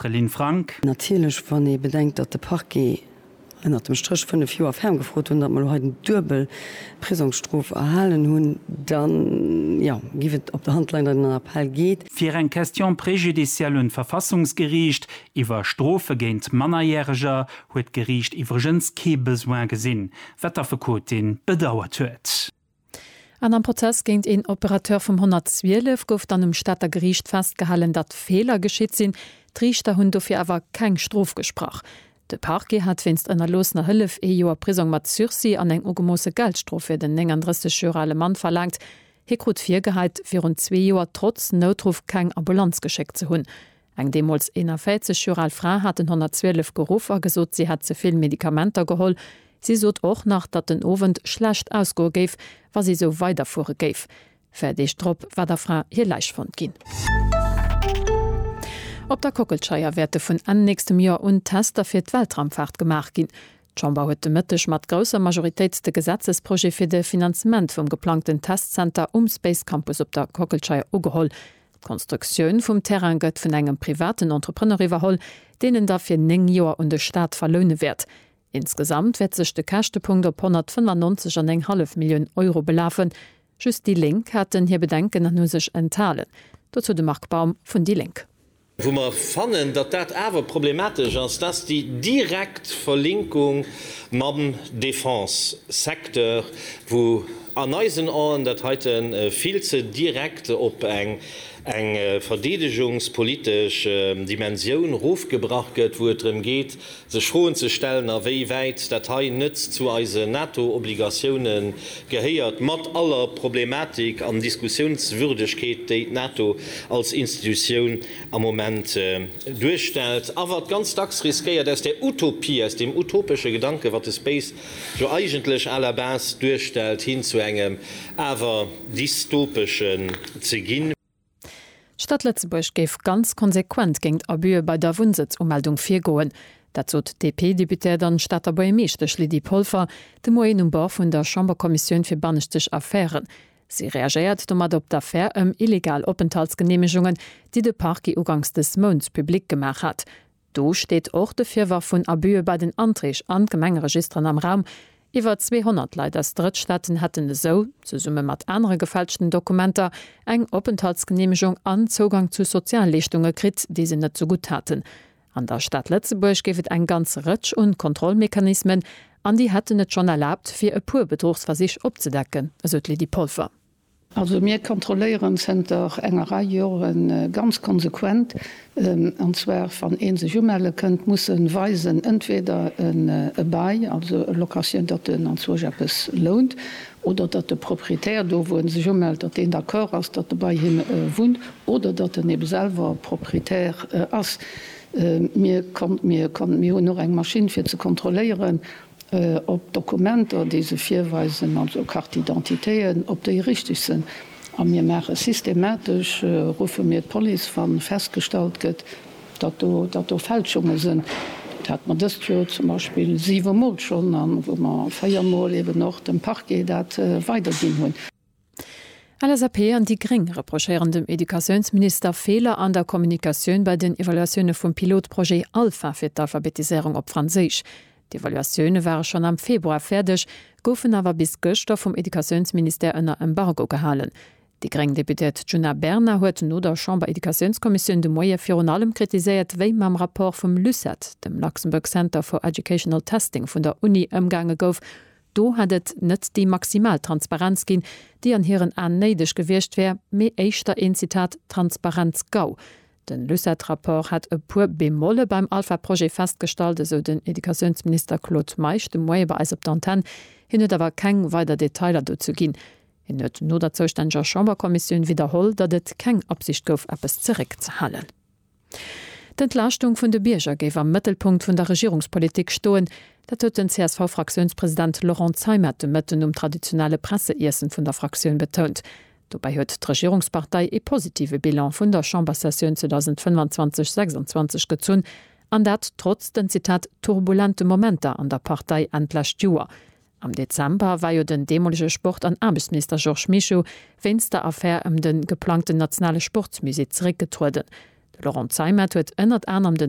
D'Céline Franck. Natierlech, wann ee bedenkt, datt de Parquet ënnert dem Stréch 5 Joer ferm gefrot hunn, datt mer elo hei den duebel Prisongsstrof erhalen hunn, da jo, géif et op der Hand leien, datt een an Appell geet. Fir eng Question préjudicielle un d'Verfassungsgeriicht iwwer Strofe géint Mannerjäreger huet d'Geriicht iwwregens kee Besoin gesinn, wat d'Affekotin bedauert huet. An am Prozess géint een Operateur vum 112 gouf dann um Stater Geriicht festgehalen, datt Feeler geschitt sinn. D'Riichter hunn dofir awer keng Strof gesprach. De Parquet hat wéinst ënnerloossener Hëllef ee Joer Prisong mat Sursis an eng ugemoosse Geldstrof fir den 39 Joer ale Mann verlaangt. Hie krut virgeheit, virun zwee Joer trotz Noutruff keng Ambulanz geschéckt ze hunn. Eng deemools 41 Joer al Fra hat den 112 geruff a gesot, si hätt ze vill Medikamenter geholl. Si sot och nach, datt den Owend schlecht ausgoe géif, wa si esou weiderfuere géif. Véier Deeg drop war der Fra hir Läich fonnt ginn. Op der Kockelscheier wäerte vun Enn nächstem Joer un Tester fir d'Weltraumfaart gemaach ginn. D'Chamber huet de Mëtteg mat grousser Majoritéit de Gesetzesprojet fir de Finanzement vum geplangten Testzenter um Space Campus op der Kockelscheier ugeholl. D'Konstruktioun vum Terrain gëtt vun engem privaten Entrepreneur iwwerholl, deen en da fir néng Joer un de Staat verloune wäert. Insgesamt wäert sech de Käschtepunkt op 195 an eng hallef Millioun Euro belafen. Just déi Lénk haten hir Bedenken an hu sech enthalen. Dozou de Marc Baum vun déi Lénk. Wou mer fannen, datt dat awer problematesch ass, dat ass déi direkt Verlinkung mam Defense-Secteur, wou an eisen Aen dat heite vill ze direkt op eng verdeedegungspolitesch Dimensioun rofgebrach gëtt, wou et drëm geet, sech Froen ze stellen, a wéi wäit dat hei net zu eise NATO-Obligatioune gehéiert, mat aller Problematik an Diskussiounswürdegkeet, déi d'NATO als Institutioun am Moment duerstellt, awer ganz dacks riskéiert aus der Utopie, aus deem utopesche Gedanken, wat de Space jo eigentlech à la base duerstellt, hin zu engem awer dystopeschen ze ginn. D'Stad Lëtzebuerg géif ganz konsequent géingt Abüe bei der Wunnsëtzumeldung virgoen. Dat sot d'DP-Deputéiert an Stater Buergermeeschtesch Lydie Polfer de Moien um Bord vun der Chamberkommissioun fir banneschtesch Affären. Si reagéiert domat op d'Affär ëm illegal Openthaltsgeneemegungen, déi de Parquet uganks des Mounts publik gemaach hat. Do steet och de Virwërf vun Abüe bei den Anträg an d'Gemengeregisteren am Raum. Iwwer 200 Leit aus Drëttstaaten hätten esou, zesumme mat anere gefälschten Dokumenter, eng Openthaltsgeneemegung an Zougang zu Sozialleeschtunge kritt, déi se net zegutt haten. An der Stad Lëtzebuerg géif et eng ganz Rëtsch un Kontrollmechanismen, an déi hätten et schonn erlaabt, fir e puer Bedruchsversich opzedecken, esou d'Lydie Polfer. Also mir kontrolléieren zënter enger Rei Jore ganz konsequent, an zwar wann ee sech umelle kënnt, muss e weisen entweder e Bail, also e Locatioun, datt en anzwousch eppes lount, oder datt de Proprietär do wou e sech umellt, datt deen d'accord ass, datt e bei him wunnt, oder datt en ebe selwer Proprietär ass. Mir hunn och eng Maschinn fir ze kontrolléieren, op Dokumenter, déi se virweisen, also Cartidentitéen, ob déi richteg sinn. A mir maache systematesch, ruffe mir d'Police, wa festgestallt gëtt, datt do, datt do Fälschunge sinn. Dat hate mer dëst Joer zum Beispill siwe Mol schonn, a wou mer véier Mol eeben och dem Parquet dat weiderginn hunn. LSAP an déi gréng reprochéieren dem Educatiounsminister Feeler an der Kommunikatioun bei den Evaluatioune vum Pilotprojet Alpha fir d'Alphabetiséierung op Franséisch. D'Evaluatioune ware schonn am Februar fäerdeg, goufen awer bis gëschter vum Educatiounsministère ënner Embargo gehalen. Déi gréng Deputéiert Djuna Bernard huet no der Chamber-Educatiounskommissioun de Moie virun allem kritiséiert, wéi mam Rapport vum LUCET, dem Luxembourg Center for Educational Testing vun der Uni, ëmgaange gouf, Do hätt et net déi maximal Transparenz ginn, déi an hiren Aen néideg gewiescht wär, mee éischter een, Zitat, Transparenz-Gau. Den Lucet-Rapport hätt e puer Bemolle beim Alpha-Projet festgestallt, esou den Educatiounsminister Claude Meisch de Moie bei eis op d'Antenne. Hien huet awer keng weider Detailer dozou ginn. Hien huet no der zoustänneger Chamberkommissioun widderholl, datt et keng Absicht gouf, eppes zeréckzehalen. D'Entlaaschtung vun de Bierger géif am Mëttelpunkt vun der Regierungspolitik stoen. Dat huet den CSV-Fraktiounspresident Laurent Zeimet de Mëtten um traditionelle Presseiessen vun der Fraktioun betount. Dobäi huet d'Regierungspartei ee positive Bilan vun der Chambersessioun 2025, 26 gezunn, an dat trotz den, Zitat, turbulente Momenter an der Partei Enn d'lescht Joer. Am Dezember war jo den deemolege Sport an Aarbechtsminister Georges Mischo wéinst der Affär ëm de geplangten nationale Sportsmusée zeréckgetrueden. De Laurent Zeimet huet ënnert anerem den